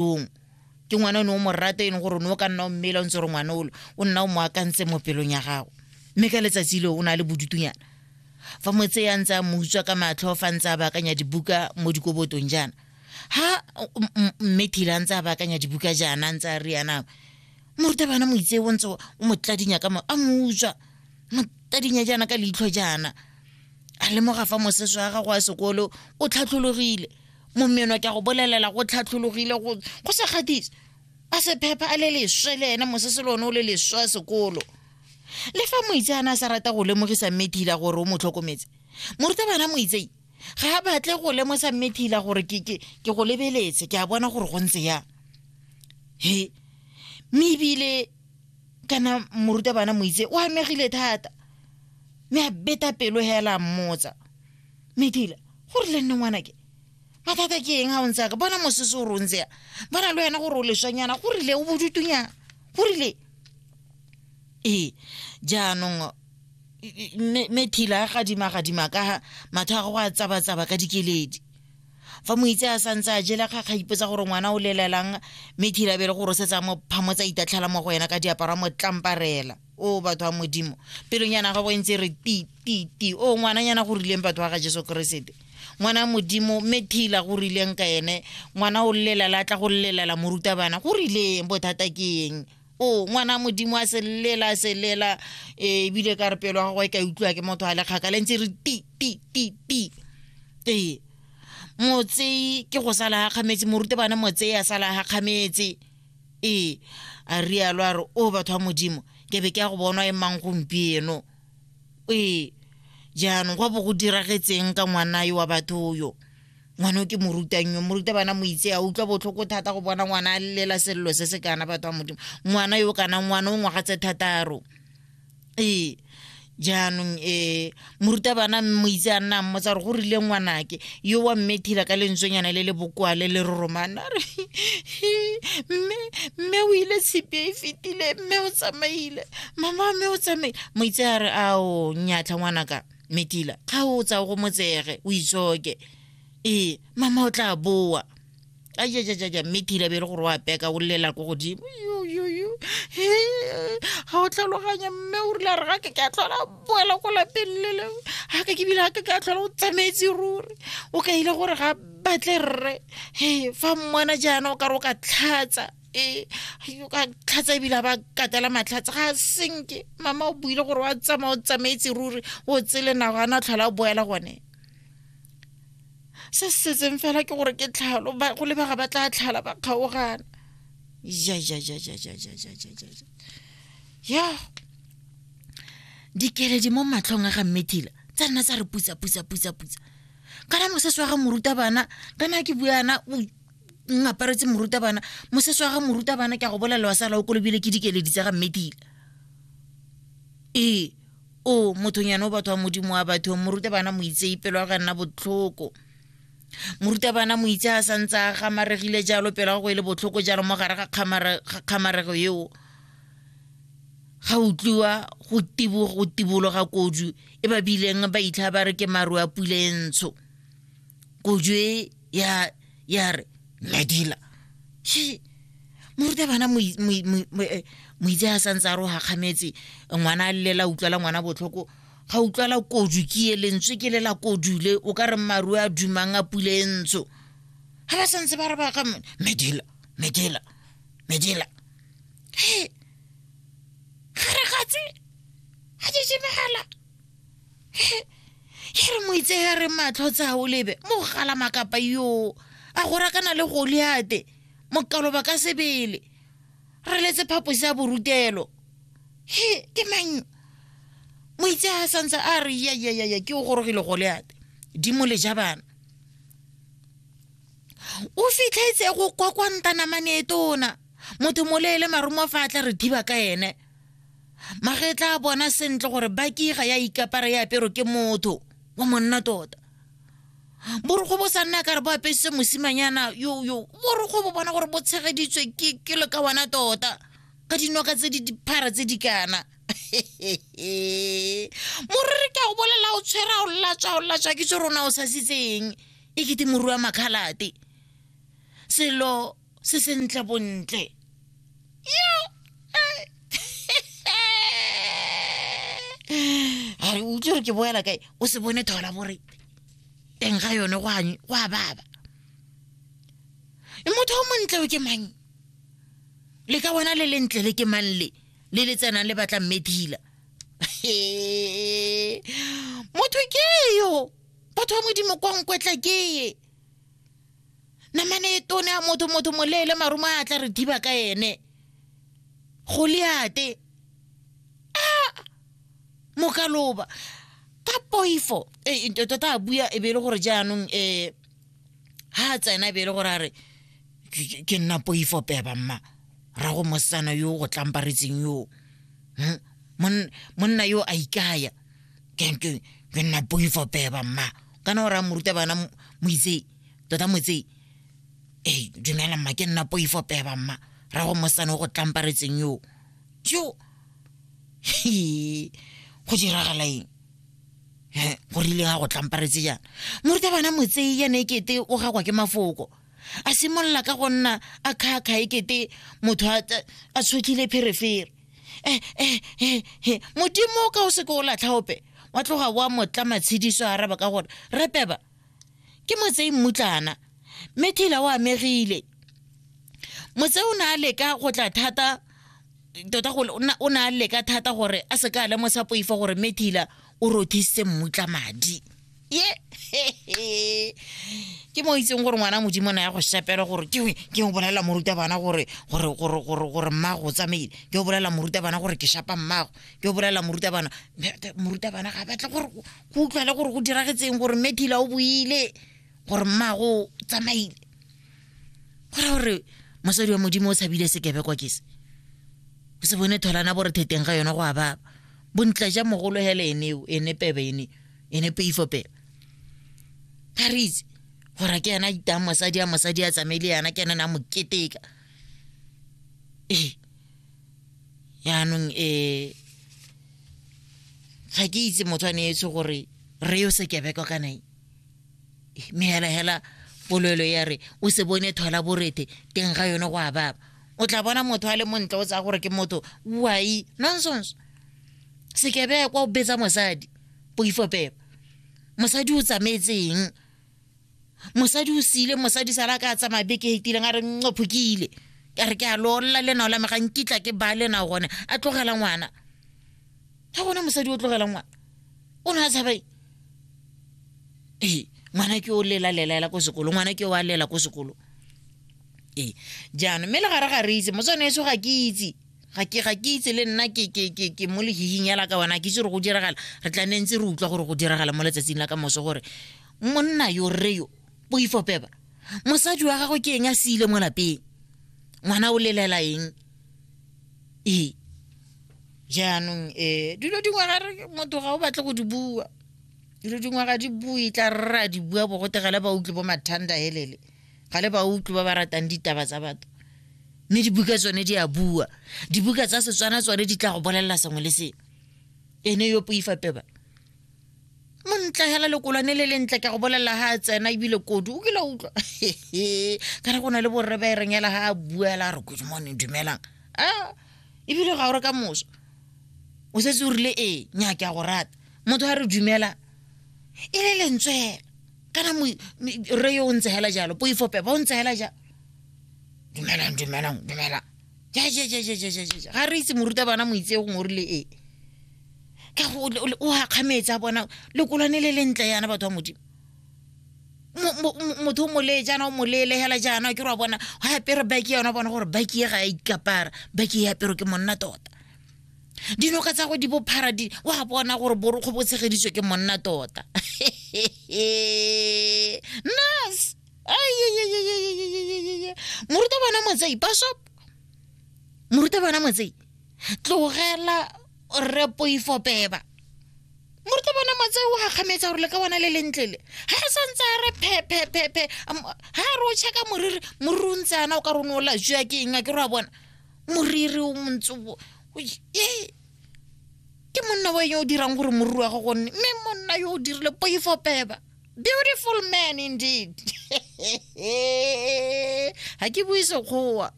pelong ke ngwana o ne o mo rata e leng gore o ne o ka nna o mmele o ntse gore ngwana olo o nna o mo akantse mo pelong ya gago mme ka letsatsi leo o na le bodutunyana fa mo tse ya ntse a mo utswa ka matlho fa ntse a baakanya dibuka mo dikobotong jaana ha mme thila ntse a baakanya dibuka jaana ntse a re yana morutabana mo itse o ntse o mo tladinya ka mo a mo utswa mo tladinya jaana ka leitlho jaana a lemoga fa mosese wa gago wa sekolo o tlhatlhologile momeno ke a go bolelela go tlhatlhologile go go sa gatise a se phepha a le leswe le ena mosese le one o le leswe a sekolo le fa moitseana a sa rata go lemogisa mmethila gore o mo tlhokometse morutabana moitsei ga a batle go lemosa mmethila gore ke ke ke go lebeletse ke a bona gore go ntse yang he mme ebile kana morutabana moitse o amegile thata mme a beta pelo hela mmotsa medila go rile nne ngwanake mathata ke eng ga o ntse ka bona mosese o rontsea bona le wena gore o leswanyana go rile o bodutunyana go rile ee jaanong methila a gadima-gadima ka ga matho a go a tsaba-tsaba ka dikeledi fa moitse a santse a jela kgakga ipotsa gore ngwana o lelelang methila bele gore o setse a mo phamotsa itatlhela mo go ena ka diaparo a mo tlamparela o batho wa modimo pelonyana gago e ntse re ti ti ti o ngwananyana go rileng batho wa ga jesu keresete ngwana modimo mme thila go rileng ka ene ngwana o llela la tla go llela morutabana go rileng bothata ke eng o ngwana modimo a se llela se llela eh, ebile ka re pelo ga go e ka utlwa ke motho a le kgaka le ntse re ti ti ti ti ee motsei ke go sala ga kgametse morutabana motsei a sala ga kgametse ee a rialo a re o batho ba modimo ke be ke ya go bonwa e mang gompieno ee jaanong go bo go diragetseng ka ngwana yo wa batho yo ngwana o ke mo rutang yo mo ruta bana mo itse a utlwa botlhoko thata go bona ngwana a lela selelo se se kana batho ba modimo ngwana yo kana ngwana o ngwaga tse thataro ee jaanong um morutabana mo itse a nnang mo tsa gore go rile ngwanake yo wa mme thila ka lentswenyana le le bokoa le le roromana re mme mme o ile tshipi e fetile mme o tsamaile mama mme o tsamaile mo itse a re ao nyatlha ngwanaka metila ga o tsa go motsege o itsoke ee mama o tla boa ajajajaja mme tira be e le gore wa peka o llela ko godimo yoyoyo ga o tlhaloganya mme o rile re ga ke ke a tlhola boela ko lapeng le leo ga ke ke bile ga ke ke a tlhola o tsamaetse ruri o ka ile gore ga batle rre e fa mmona jaana o ka re o ka tlhatsa e o ka tlhatsa ebile ba katela matlhatsa ga a senke mama o buile gore wa tsamaya o tsamaetse ruri o tsele nago a na tlhola o boela gone se se setseng fela ke gore ke tlhalo go lebega ba tla tlhala ba kgaogana ya dikeledi mo matlhong a ga mmethila tsa nna tsa re putsa putsa putsa putsa kana mosese wa ga morutabana kana ke buana o ngaparetse morutabana mosese wa ga morutabana ke a go bolelela wa sala o kolobile ke dikeledi tsa ga mmethila ee o mothonyane o batho wa modimo wa batho morutabana moitse ipelo ya ga nna botlhoko morutabana moitse a sa ntse a gamaregile jalo pelo ya go e le botlhoko jalo mo gare ga kgamarego eo ga utlwiwa go tibogo go tibologa kodu e ba bileng ba itlha ba re ke maru a pule e ntsho kodu e ya ya re ladila she morutabana eh, moitse a santse a roga kgametse ngwana a lela utlwala ngwana botlhoko ga utlwala kodu ke e lentswe ke lela kodule o ka re marue a dumang a pule e ntsho ga ba santse ba re ba ga medela medela medela he ga re gatse ga di jemegala e re moitsega re matlho tsa o lebe mo go gala makapa yoo a go rakana le goliate mokaloba ka sebele re letse phaposi ya borutelo he ke mang moitsega santse a re yayayaya ke o gorogile goliate dimo le ja bana o fitlhetse go kwa kwa ntanamane e tona motho moleele marumo fa a tla re thiba ka ene magetla a bona sentle gore baki ga ya ikapara ya apero ke motho wa monna tota borokgo bo sa nna ka re bo apesitse mosimanyana yo yo borokgo bo bona gore bo tshegeditswe ke ke le ka wana tota ka dinoka tse di diphara tse di kana morere ke a go bolela o tshwere a o latswa o latswa ke tse rona o sasitseng e kete moru wa makgalate selo se sentle bontle a re o itse gore ke boela kae o se bone thola bore teng ga yone go a baba e motho o montle o ke mang le ka wena le lentle le ke mang le le le tsenang le batlang medila motho ke yo batho ba modimo kwa nkwetla ke ye namane e tone a motho motho moleele marumo a tla re thiba ka ene goliate a mokaloba ka poifo e, e, tota a bua e be e le gore jaanong um ha a tsena e be e le gore a re ke nna poifo peba mma ra go mosetsana yo go tlamparetseng yoo hm? monna yo a ikaya ke ke- ke nna poi for peba mma kana o raya moruta bana mo- moitsei tota motsei ee dumela mma ke nna poi for peba mma ra go mosane o go tlamparetseng yo jo Hee, go diragala eng He, go rile ga go tlamparetse jang moruta bana motsei yane e kete o gakwa ke mafoko a simolola ka go nna a kgakga ekete motho a tshotlhile pherefere eh, eh, eh, eh. modimo o ka o seke o latlhaope wa tloga wa motla matshediso a araba ka gore re peba ke motsei mmutlana mme thila o amegile motse o ne a leka go tla thata tota o ne a leka thata gore a seka a lemosa poifo gore mme thila o rothise mmutla madi ye ke mo itseng gore ngwana modimo na ya go sepela gore ke ke o bolela moruta bana gore gore gore gore gore mmago o tsamaile ke o bolela moruta bana gore ke shapa mmago ke o bolela moruta bana moruta bana ga batle gore go utlwale gore go diragetseng gore methila o boile gore mmago o tsamaile gore gore mosadi wa modimo o tshabile sekebekwa ke se o se bone tholana bore theteng ga yone go a baba bontla ja mogolo hela eneo ene pebe ene ene peifo pebe ba re itse gore ke ena itang mosadi a mosadi a tsamaile yana ke ena na mo keteka ee yaanong um ga ke itse motho a neetswe gore re yo sekebeko ka nae mme hela hela polelo ya re o se bone thola borete teng ga yone go a baba o tla bona motho a le montle o tsaya gore ke motho wai nonsense sekebe kwa o betsa mosadi poifopelo mosadi o tsamaetseng mosadi o sile mosadi sala ka tsamaya beke e fetileng a re nqophokile ka re ke a lolola lenao la me ga nkitla ke ba lenao gone a tlogela ngwana ga gona mosadi o tlogela ngwana o ne a tshabae ee ngwana ke o lela lela ela ko sekolo ngwana ke o a lela ko sekolo ee jaanong mme le gare ga re itse motswane eso ga ke itse ga ke ga ke itse le nna ke ke ke ke mo lehihing ya la ka bona ke itse gore go diragala re tla ne ntse re utlwa gore go diragala mo letsatsing la ka moso gore monna yo rre yo poifopeba mosadi wa gagwe ke eng a siile mo lapeng ngwana o lelela eng ee jaanong um dilo dingwe ga re motho ga o batle go di bua dilo dingwe ga di bue tla rra di bua bogote ga le ba utlwe bo mathanda helele ga le ba utlwe ba ba ratang ditaba tsa batho mme dibuka tsone di a bua dibuka tsa setswana tsone di tla go bolelela sengwe le sengwe ene yo poifapeba montla hela lekolwane le lentle ke go bolelela ga a tsena ebile kodi o kile utlwa ka re go na le borre ba e reng hela ga a bua hela a re good morning dumelang a ebile ga o re ka moso o setse o rile ee nya ke a go rata motho a re dumela e le lentswe hela kana re yo o ntse hela jalo poifope ba o ntse hela jalo dumelang dumelang dumelang jajajajajajaja ga re itse moruta bana moitse gongwe o rile ee ka go o akgametse a bona lekolwane le le ntle yana batho ba modimo motho o molee jaana o moleele hela jaana ke re wa bona go apere baki yona bona gore baki e ga e ikapara baki e apero ke monna tota dinoka tsa go di bophara di wa bona gore borokgo bo tshegeditswe ke monna tota nas moruta bana motsei pasop moruta bana motsei tlogela rre poifo beba moruta bona matse o gakgametsa gore le ka bona le lentlele ga re santse a re phephephephe ga re o checka moriri moriri o ntse ana o ka rone o lajwa ke eng a ke re wa bona moriri o montse ke monna wa yo o dirang gore moriri wa go gonne mme monna yo o dirile poifo beba beautiful man indeed ga ke bue sekgowa